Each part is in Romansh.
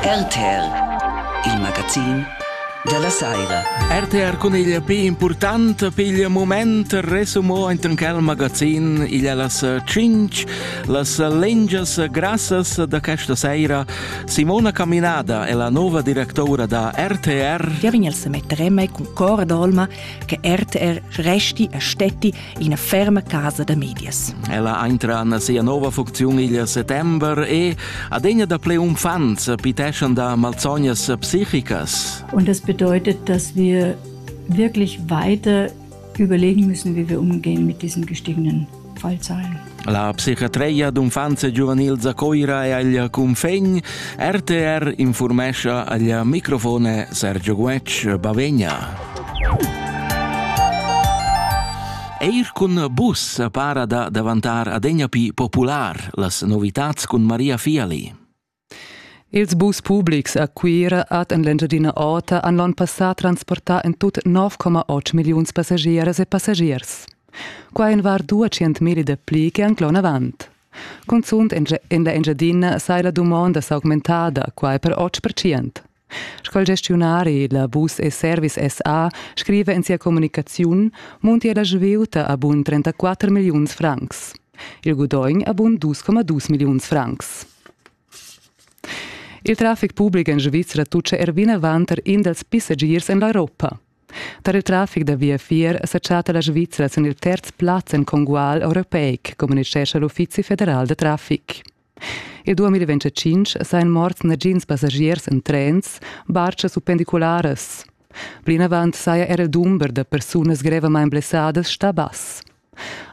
RTR, il magazin dalla saira. RTR cun il più important pigl moment resumo entran quel magazin igl las cinc las lengias grassas da questa saira Simona Caminada è la nuova directora da RTR. Wir wenn jetzt mit Remme con Cor d'Olma che RTR resti e stetti ina ferma casa da medias. Ella entra en sia nova funcziun il settember e, adegna da ple umfants, piteschan da malsognas psichicas. Und das bedeutet, dass wir wirklich weiter überlegen müssen, wie wir umgehen mit diesen gestiegenen Fallzahlen. La psichiatria d'unfants e giuvenils a Coira e agl cunfegn RTR informescha agl microfone Sergio Guetg Bavegna. Eir cun bus para da davantar adegna pi popular las novitats cun Maria Fiali. Ils bus publics a Cuira ad en l'Engiadina Ota han l'onn passà transportà en tut 9,8 milliuns passagiers e passagiers. Quai en var 200 mil da pli che anc l'onn avant. Cunzunt en la Engiadina sai la dumonda s'augmentada, quai per 8%. Sco il gestiunari la Bus e Service SA scriva en sia communicaziun muntia la svieuta a bun 34 milliuns francs. Il gudogn a bun 2,2 milliuns francs. Il traffic public en Svizzera tuccia er vinavant tar in dals passagiers en l'Europa. Tar il traffic da viafier sa chatta la Svizzera sin il terz plaz en congual europeic, communitgescha l'Uffizi federal da traffic. Il 2025 sajan morts nagins passagiers en trens, bartgas u pendicularas. Plinavant saja era il dumber da persunas grevamain blessadas stà bass.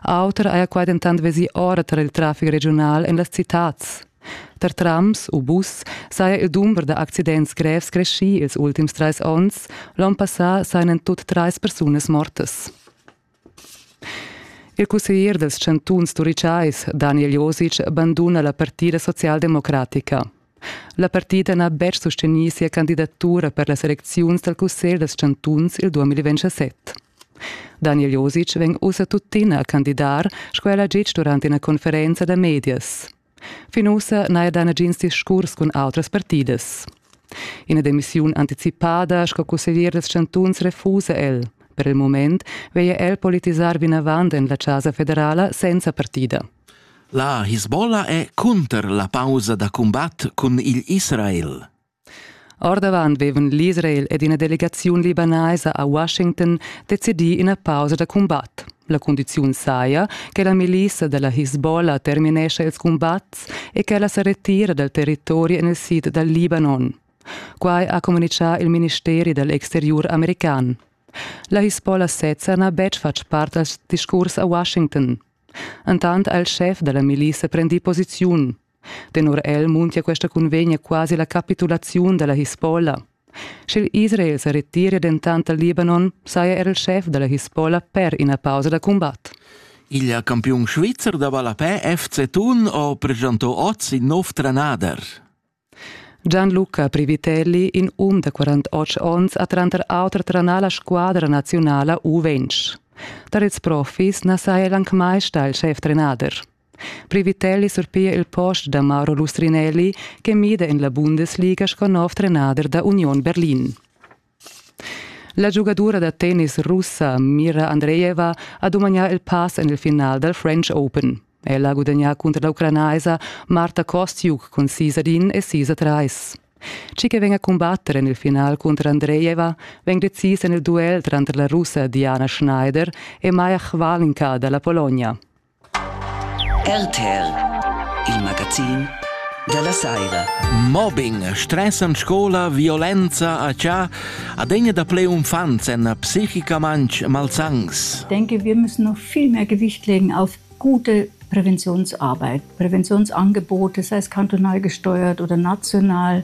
Auter haja quai dentant vesì ora tar il traffic regiunal en las citads. Tar trams u bus saja il dumber da accidents grevs creschì ils ultims trais onns, l'onn passà sajan en tut trais persunas mortas. Il cusseglier dals chantuns turitgais Daniel Josic banduna la partida socialdemocratica. La partida n'ha betg sustegnì sia candidatura per las elecziuns dal cussegl dals chantuns il 2027. Daniel Josic vegn ussa tuttina a candidar, sco el ha ditg durant ina conferenza da medias. Fin ussa n'haja dà nagins discurs cun autras partidas. Ina demissiun anticipada sco cusseglier dals chantuns refusa el. Per il mument veglia el politisar vinavant en la Chasa federala senza partida. La Hisbollah è cunter la pausa da cumbat cun igl Israel. Ordavant vevan l'Israel ed ina delegaziun libanaisa a Washington decidì ina pausa da cumbat. La cundiziun saja che la milissa da la Hezbollah terminescha ils cumbats e ch'ella sa retira dal territori en il sid dal Libanon. Quai ha communitgà il ministeri dal exteriur american. La Hezbollah sezza n'ha betg fatg part dal discurs a Washington. Entant ha il schef da la milissa prendì posiziun. Tenor el muntia questa cunvegna quasi la capitulaziun dalla Hisbollah. Sch'il Israel sa retiria dentant dal Libanon, saja er il schef dalla Hisbollah per ina pausa da cumbat. Il campiun svizzer da ballapè FC Thun ha presentà oz in nov trenader. Gianluca Privitelli, in um da 48 onns, ha tranter auter trenà la squadra nazionala U20. Tar ils profis na saja el anc mai stà il schef-trenader. Privitelli surpia il post da Mauro Lustrinelli che mida en la Bundesliga sco nov trenader da Union Berlin. La giugadura da tennis russa Mira Andreeva ha dumagnà il pass en il final dal French Open. Ella ha gudagnà cunter la ucranaisa Marta Kostiuk cun sis ad in e sis a trais. Tgi che vegn a cumbatter en il final cunter Andreeva vegn decis en il duel tranter la russa Diana Schneider e Maja Chvalinka da la Pologna. RTR il magazin dalla saira. Mobbing, stress en scola, violenza a cha adegna da ple umfants en psichica manch malsangs. Denke, wir müssen noch viel mehr Gewicht legen auf gute Präventionsarbeit, Präventionsangebote, sei es kantonal gesteuert oder national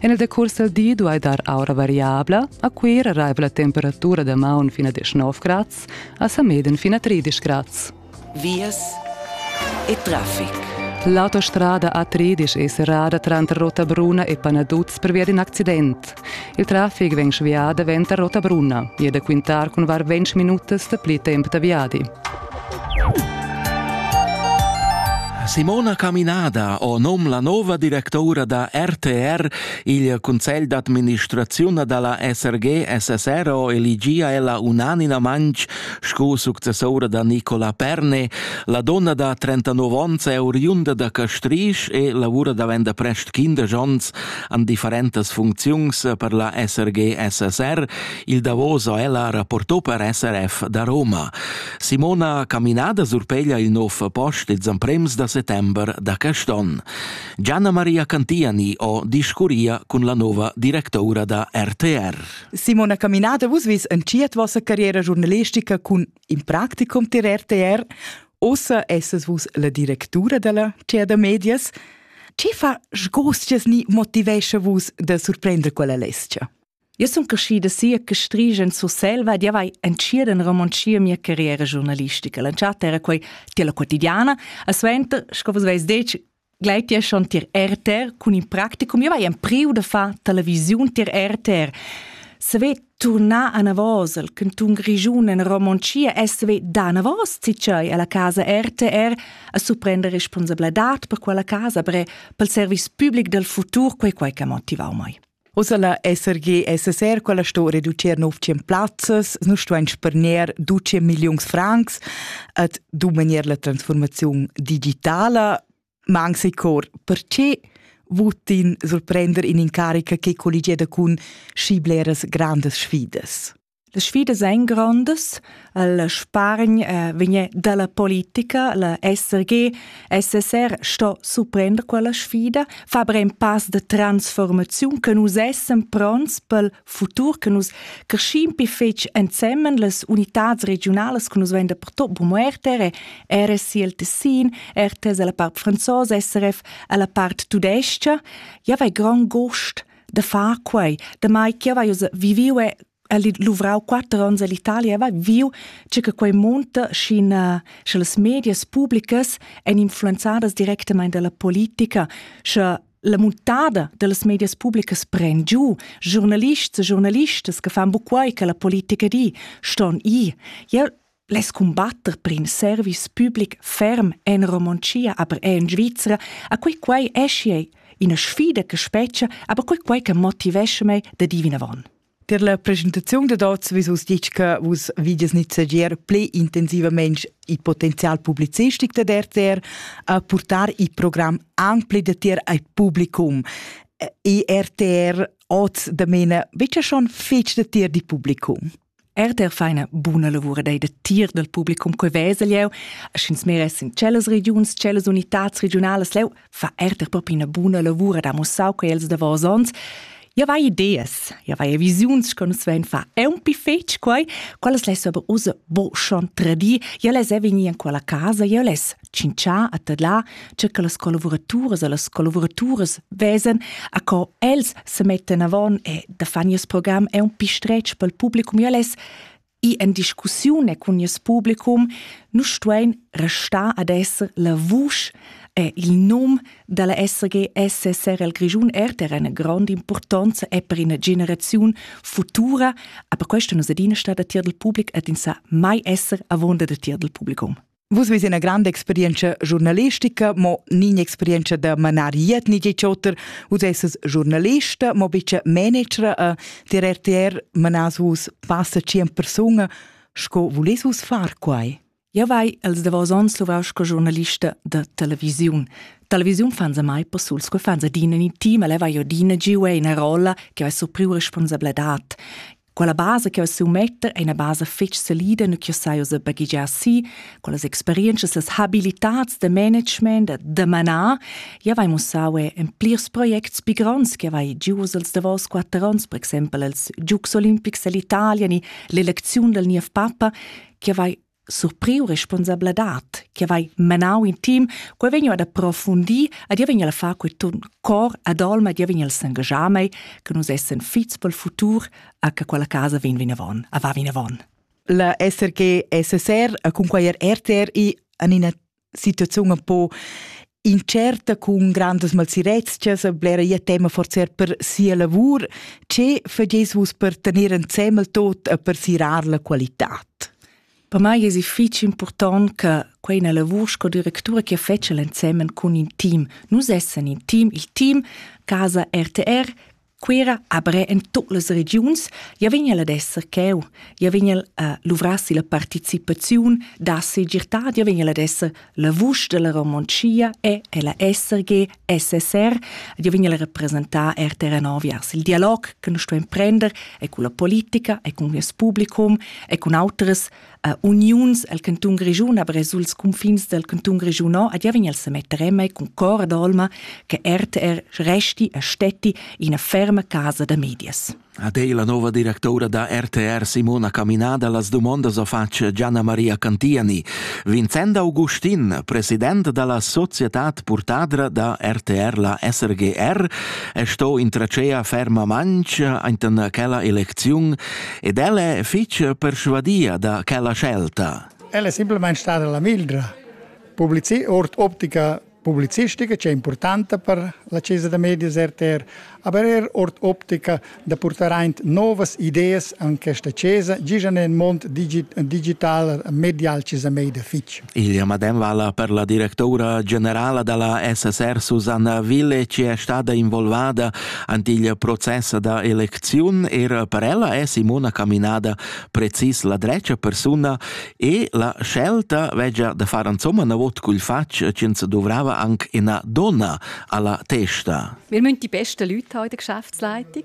En il decurs dal di duai dar aura variabla, a Cuira raivla temperatura da maun fin a 19 grads, a Sameden fin a 13 grads. Vias e traffic. L'autostrada A13 è serrada tranter Rotabruna e Panaduz pervia d'in accident. Il traffic vegn svià davent da Rotabruna e da quintar cun var 20 minutas dapli tempo da viadi. Simona Caminada o nom la nova directoura da RTR il Cunsegl d'administraziun da la SRG-SSR ho eligia ella unanimamaing sco successora da Nicola Perne, la donna da 39 ons è oriunda da Castrisch e lavura davent da prest 15 ons an differentas funcziuns per la SRG-SSR Il davos ha ella rapportò per SRF da Roma. Simona Caminada surpeglia il nov post ils emprems da settember da quest'on. Gianna Maria Cantiani ho discurria cun la nova directoura da RTR. Simona Caminada, vus vis en ciet vossa carriera giornalistica cun in practicum tir RTR. Ossa esses vus la directura della Cia da Medias. Ce fa sgostias ni motivescha vus da surprender quella lescha? Io sun crescida sia che strige in Surselva ed io vai entschiet in romoncia mia carriera giornalistica. L'entschatta era quei tier la quotidiana, a suenter, sco vus veis detg, gleit tia schon tier RTR cun in practicum. Io vai empriu da far televisiun tier RTR. Se ve tornar a Navos, il cantun Grigiun in romoncia, e se ve da Navos zitschei alla casa RTR a surprender responsabladad per quella casa, bre pel service public del futur, quei quei che motivau mai. Ussa la SRG SSR quella sto reducir nov tschien plazzas, nu stuain spargner 12 milliuns francs at dumanier la transformaziun digitala. Ma anche se cor, perché votin surprender in incarica che colligieda cun schi bleras grandes sfidas? Le sfidas ein grondas. La spargn eh, vegn dalla politica. La SRG, SSR sto suprender quella sfida, fa aber ein pass de transformaziun che nus essen pronts pel futur, che nus crescim pi fetg ensemen las unitads regionales che nus vein da pertot bu muerte, RSI el Tessin, RTS alla part franzosa, SRF alla part tudesca. Ja, vai grand gost da far quei, damai che vai viviu e luvrau quatter onns all'Italia, vai viu che che quei monta schin sche las medias publicas ein influenzadas directamente dalla politica, sche la muntada dallas medias publicas pren giu giornalists e giornalistas che fan bu quei che la politica di, ston i. Jeu Les cumbatter per in service public ferm en Romontschia, aber er in Svizra, a quei quai eschi ina sfida che spetga, aber quei quai che motivesce me da di vinavon. Per la presentazione da dazu vi us ditg che vus vides nizzegier pli intensivament il potenzial publizistico da RTR a portare il programm anche pli da tier al publicum. E RTR oz da mena, bitte schon fitch da tier di publicum. Er der fa ina buna lavura dei da tir dal publicum quei vesel jeu, sch'ins meress in cellas regiuns, cellas unitats regionalas leu, fa er der propi ina buna lavura da mussau quei els davos ons. Ja vai ideas, ja vai visiuns che nus vein fa. È un pi fetg quei, quelles les aber usa bo schon tradir, ja les è vegni in quella casa, ja les tschintschà a tadlar che che las collavuraturas e las collavuraturas vesan a co els se mettan avon e da fan nies program è un pi stretg pel publicum ja les i en discussione cun nies publicum nu stuein restar ad esser la vusch e il num dalla SRG SSR al Grischun RTR eine grande importanza è per una generazione futura, aber questa nos adina stata tier del public et in sa mai esser avonda da tier del publicum. Vus veis ina granda experienza giornalistica, mo nin experienza da manar iet ni oter. Vus esses giornalista, mo bice managera a dir RTR manas vus passa cient persona. Sco vulis vus far quai? Ja vai els davos ons luvau sco giornalista da televisiun. Televisiun fan se mai possul, sco fan se dine ni team, leva io dine giue in rolla che ha su priu responsabilità. Quella basa che eu metter è una basa fitch solida nu ch'eu sai usa baghegiar si, con las experientschas, las habilitats da management da da manar, ja vai mussau e in plirs projects pi gronds che vai gius als davos quatter ons, per exaimpel als Giugs olimpics dell'Italia ni l'elecziun dal niev papa, che vai surpriu responsabladad che vai menau in team, quei vegn ad approfundir ad ia vegn a far quei ton cor ad olma ad ia vegn a s'engagiar mei che nus essen fits pel futur a che quella casa vegn vinavon, a va vinavon. La SRG SSR a cun quei RTR i an ina situaziun un po incerta cun grandas malsirezchas, blera ia tema forzer per sia lavur. Ce fageis vus per tener ensemmel tot e per sirar la qualitat? Per mai es fitg important che quei una lavur sco directura che fece l'ensemen cun in team. Nus essen in team, il team Casa RTR Cuira apre en tutt las regiuns, ja vegn el ad esser cheu, ja vegn el a luvrassi la participaziun da segirtà, ja vegn el ad esser la vusch della Romontschia e ella SRG, SSR, ja vegn el a representar RTRNO viers il dialog che nus stuein prender e con la politica e con il publicum e con autras a uniuns el cantun Grischun, aber suls confins del cantun Grischun a diavin el se mettere mai con cor d'olma che RTR resti e stetti in ferma casa da medias. A te la nova directora da RTR Simona Caminada las domondas o face Gianna Maria Cantiani. Vincenda Augustin, president dalla società portadra da RTR la SRGR, è sto in tracea ferma manch enten quella eleziun ed ella è fitg perschuadia da quella scelta. Ella è semplamain stada la mildra. Publici ord optica publicistica che è importante per la Chiesa da Medias RTR, aber er ord optica da portar aint novas ideas an questa Chiesa, gijan en mond digital, medial Chiesa Media fitch. Il medem vala per la directoura generala dalla SSR Susanna Ville, che è stada involvada ant il process da elecziun. Er per ella è Simona Caminada precis la drecia persuna e la scelta vegia da far insomma na vot cul fatg che se dovrava anche una donna alla testa. Wir müssen die besten Leute haben in der Geschäftsleitung.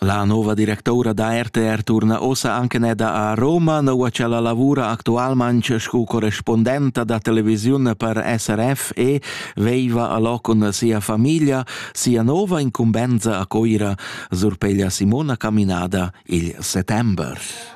La nova directoura da RTR turna ossa anche neda a Roma, noua ch'ella lavura actualmanc scu correspondenta da televisiun per SRF e veiva alò cun sia famiglia sia nova incumbenza a Coira, surpeglia Simona Caminada il settember.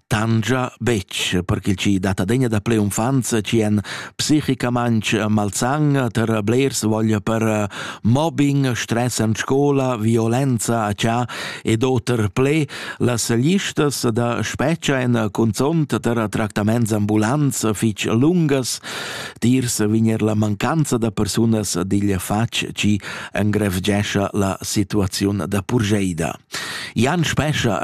tangia betg, perché chi dat adegna daplè unfanza chi en psichicamaintg malsang ter blers voglia per eh, mobbing, stress en scola, violenza a cha ed oter ple las listas da speccia en consont ter tractaments ambulants fich lungas, tirs vigner la mancanza da persunas digl fac chi engrevgescha la situaziun da purgeida. Jan Spescha,